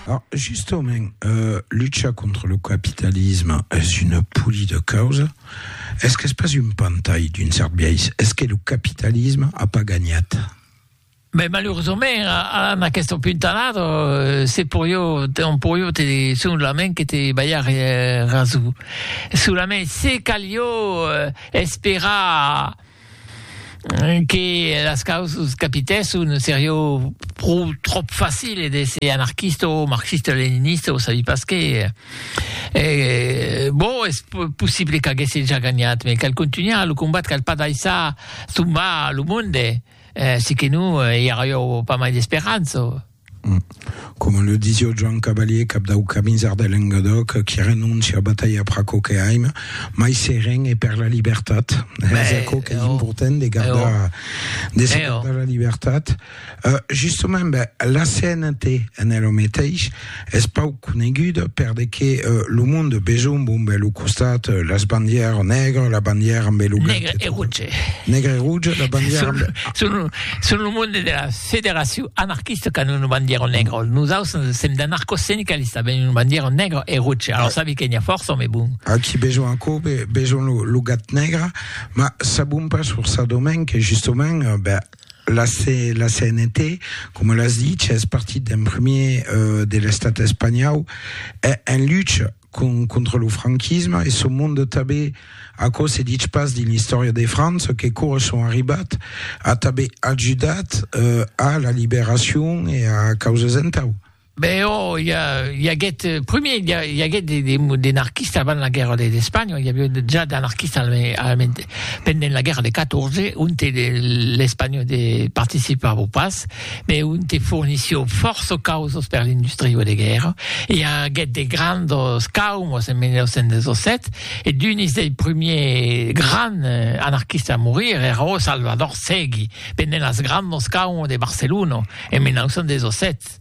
Alors, justement, euh, lucha contra lo capitalisme es una poli de causa. Es qu'es pas un pantai d'un cert biais? Es que lo capitalisme a pas gagnat? Ben, maluresament, a, en aquesta puntanada, euh, se poió, on poió te, solament que te ballar eh, raso. Solament se calió eh, esperar que las causas capitèsson serió pro tròp facile d'èsser anarquista o marxista-leninista o sabi pas qué, e bon es possible qu'aguèsse ja ganhat me cal contunhar lo combat cal pas daissar tombar lo monde, si que non i arrió pas mai d'esperança. Coma le disio Joan Cavalier, cap dau Camisard de Lengadòc, qui renóncia a batalhar per aquò que aim, mai seren e per la libertat. Es aquò qu'es important de gardar, de se gardar la libertat. Justament, ben, la CNT en es lo meteis, es pauc coneguda per de que lo monde besonh bombe lo costat las bandièr nègra, la bandièr ambe lo blanc. Nègre e rouge. Nègre e rouge, la bandièr ambe. Son lo monde de las. Federacion anarquista qu'an una bandiera negra, nosaus sèm d'anarcosindicalista, avèm una bandiera negra e roja, alors sabi que n'i a fòrça òme bon. Aquí besonh aquò, besonh lo gat negre, ma sabon pas forçadament que justement ben, la, la CNT, coma l'as dit, es partit d'un premier euh, de l'estat espanhau, en lucha con, contra lo franquisme, e son monde tabé, aquò se ditz pas dins l'istòria de França, que cora son arribat a tabé ajudat eh, a la liberacion e a causas entau. Be oh, i, i aguèt, primier, i, i aguèt de, de, de anarquistes avant la guerra de, d'Espanha, i aviá ja d'anarquistes al, al, pendent la guerra de 14, onte l'Espanha de, participava pas, Be un te fornissió fòrça causas per l'industriu de guèrra. I aguèt de grandos caumos en 1917 e d'unis dei prumiers grands anarquistes a morir èra ò Salvador Segui pendent as grandos caumos de Barcelona en 1917.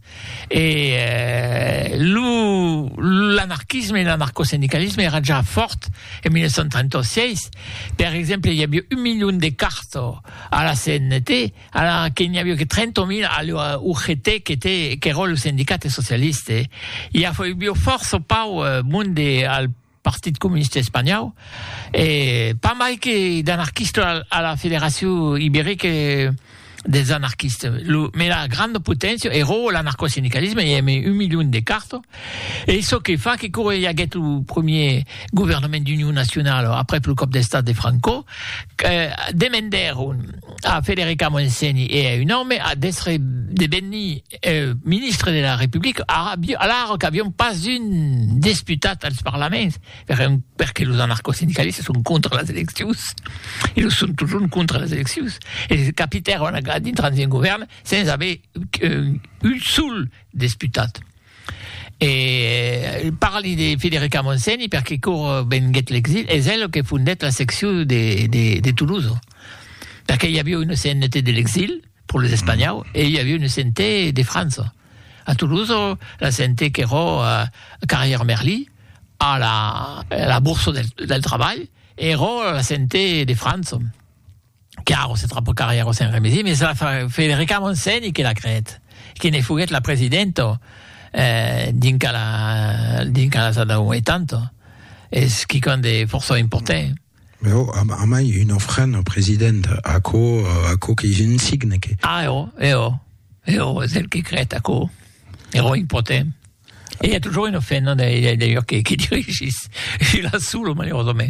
E lo l'anarquisme e l'anarcosindicalisme èra ja fòrt en 1936. Per exemple, i avió un milion de cartas a la CNT. Ara que n'i avió que 30.000 a l'ua UGT qu'eró lo sendicate socialiste, i afoibió fòrça o pauc monde al Partit Comuniste Espanhòu, e pas mai que d'anarquistes a la Federacion Ibérique des Anarquistes. Lo mèla granda poténcia eró l'anarcosindicalisme, i ème un milion de carto, e çò que fa que quora i aguèt lo premier governament d'union nacionala aprèp lo còp d'estat de Franco, demendèron A Federica Montseny e a un òme a d'èstre devenir ministre de la Republica, alara qu'avián pas un desputat als parlaments, perque los anarcosindicalistas son contra las eleccions, e lo son totjorn contra las eleccions, e capitèron a dintrans d'un govèrn sens aver un sol desputat. E parli de Federica Montseny perque quaur venguèt l'exil es ela que fondèt la seccion de Toulouse. Perque i aviá una CNT de l'exil pro los Espanhaus e i aviá una CNT de França. A Toulouse la CNT qu'èra a Carrière Merli, a la Bourse del Trabalh, èra la CNT de França. Claro, se trapò Carrièro Sen Remesi, mès la Federica Montseny que la creèt, que ne foguèt la presidenta dinca la Sadauon, e tant, es quicòm de fòrça important. Mès ò, a mai un ofrèn au president, aquò, aquò qu'ei un signe que. A ò, e ò, e ò, es el que creèt aquò, e ò important. E i a totjorn un ofrèn, non, d'ailleurs, que dirigís, e la solo, malerosament.